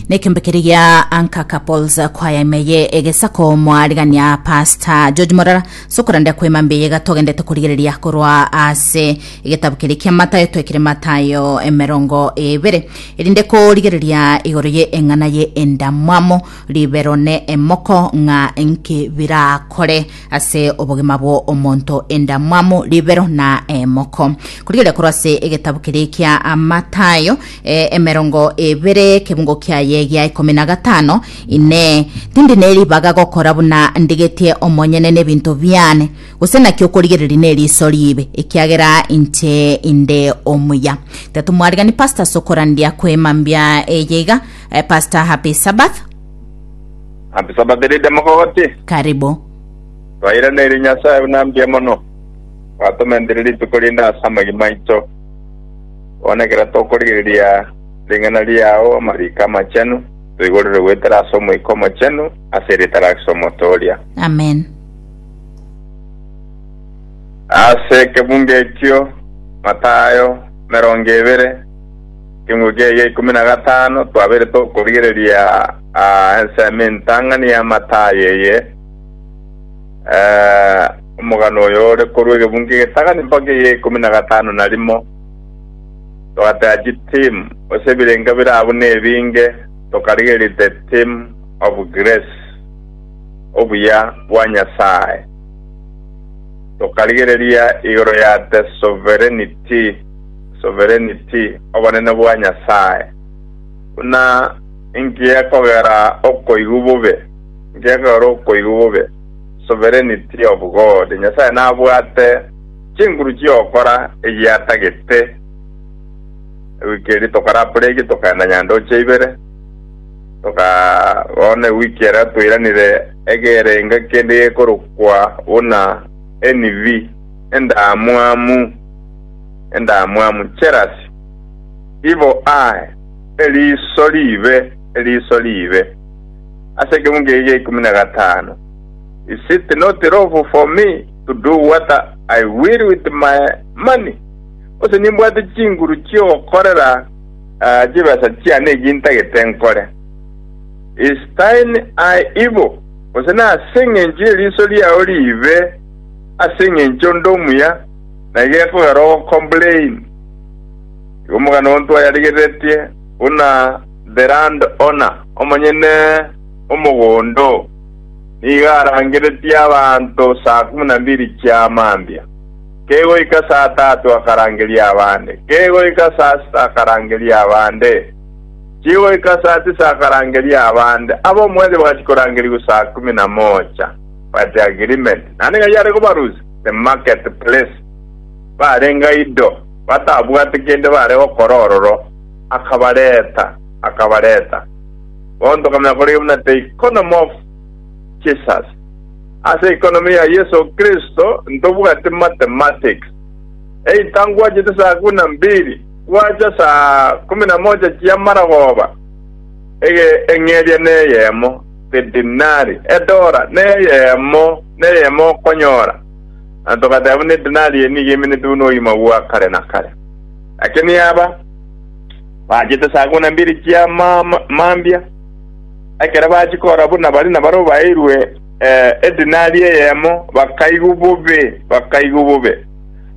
nekembekeregia anka couples kwaya imeye egesako mwarigania pasta george morara sokorande kwema mbeyega togendete korigereria korwa ase egetabu keri kia matayo twekire matayo emerongo ebere erinde korigereria igoro ye eng'ana ye endamwamo ribero ne emoko ng'a enki birakore ase obogima bwo omonto endamwamo ribero na emoko korigereria korwa ase egetabu keri kia amatayo eh, emerongo ebere ekebungo kiaye gia ikomi na gatano ine tindi neribaga gokora buna ndigetie omonyene nebinto biane gose naki okorigereria neriso ribe ekiagera inche inde omuya tetu mwarigani pastor sokorandia kwemambia eye iga eh, pastor happy sabbath Happy Sabbath rede mogogoti. karibu Twairaneri Nyasaye buna mbuya mono. Twatomendereri tukorinde asa amagima aito. Bono ekero tokorigereria ring'ana riao amariko amachenu, toigorere goetera ase Omoika Omochenu ase erieta ria Kristo omotooria. Amen. Ase ekebungo ekio Matayo emerongo ebere, ekeungo kiaye gia ikomi na gatano, twabeire tokorigereria ah, ensemo entang'ani ya Matayo eye. Eh, Omogano oyo ore korwa egebungo egetang'ani mpaka egia ikomi na gatano na rimo, togatera chitimu, gose ebirenga bire abwo nebinge, tokarigereria the theme of grace, obuya bwa Nyasae, tokarigereria igoro ya the sovereignty, sovereignty, obonene bwa Nyasae. Buna inki ekogera okoigwa bobe? Inki ekogera okoigwa bobe? sovereignty of God, Nyasae nabwate chinguru chi'ogokora egiatagete. Ewiki eria tokarapore eki, tokaenda Nyandoche ibere, toka bono ewiki eria toiranire egerenge kende gekorokwa buna NV, Endamwamu, Endamwamu, Jealousy, Evil eye, Eriiso riibe, Eriiso riibe. ase ekeuncha eria gia ikomi na gatano, Is it not lawful for me to do what I will with my money? Gose nimbwate chinguru chi'ogokorera ah, chibesa chiane echi ntagete nkore? Is thine eye evil? Gose nase engencho y'eriiso riao riibe ase engencho onde omuya na igekogera ogocomplain? Igo omogano ontwaye arigereretie buna Berand Ona, omonyene omogondo oo, nigo arangeretie abanto saa kumi na mbiri chia mambia. Kegoika saa tatu akarangeria abande, kegoika saa sita akarangeria abande, chigoika saa tisa akarangeria abande. Ab'omwezi bagachi korangerigwa saa kumi na mocha. Bati agreement naende ng'a yare kobarusia the market place, barenge ido batabwati kende bare gokora ororo. akabareta, akabareta, bonto okamanya korenge buna the economy of Jesus. Ase economy ya Yeso Kristo ntobwati mathematics. Either ngwachete saa kumi na mbili, gwacha saa kumi na moja chi'amarogooba, ege eng'eria neyemo, the dinari, edora, neyemo, neyemo okonyora. Na togateba buna edinari eye nigo eminetwe buna obogima bwa kare na kare. Lakini aba, Bachete saa kumi na mbiri chia ma- mambia, ekero bachia kora buna baria nabarabwo baeirwe eh, edinari eyemo, bakaigwa bobe, bakaigwa bobe,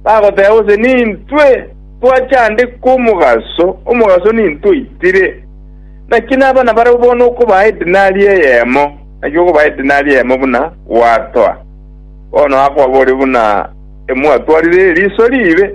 bagoteba gose, Nintwe twachande kw'omogaso, omogaso nintwe oitire. Naki naba nabarabwo bono okobaa edinari eyemo, naki okobaa edinari eyemo buna gwatoa. Bono akobaboria buna emwatwarire eriso riibe.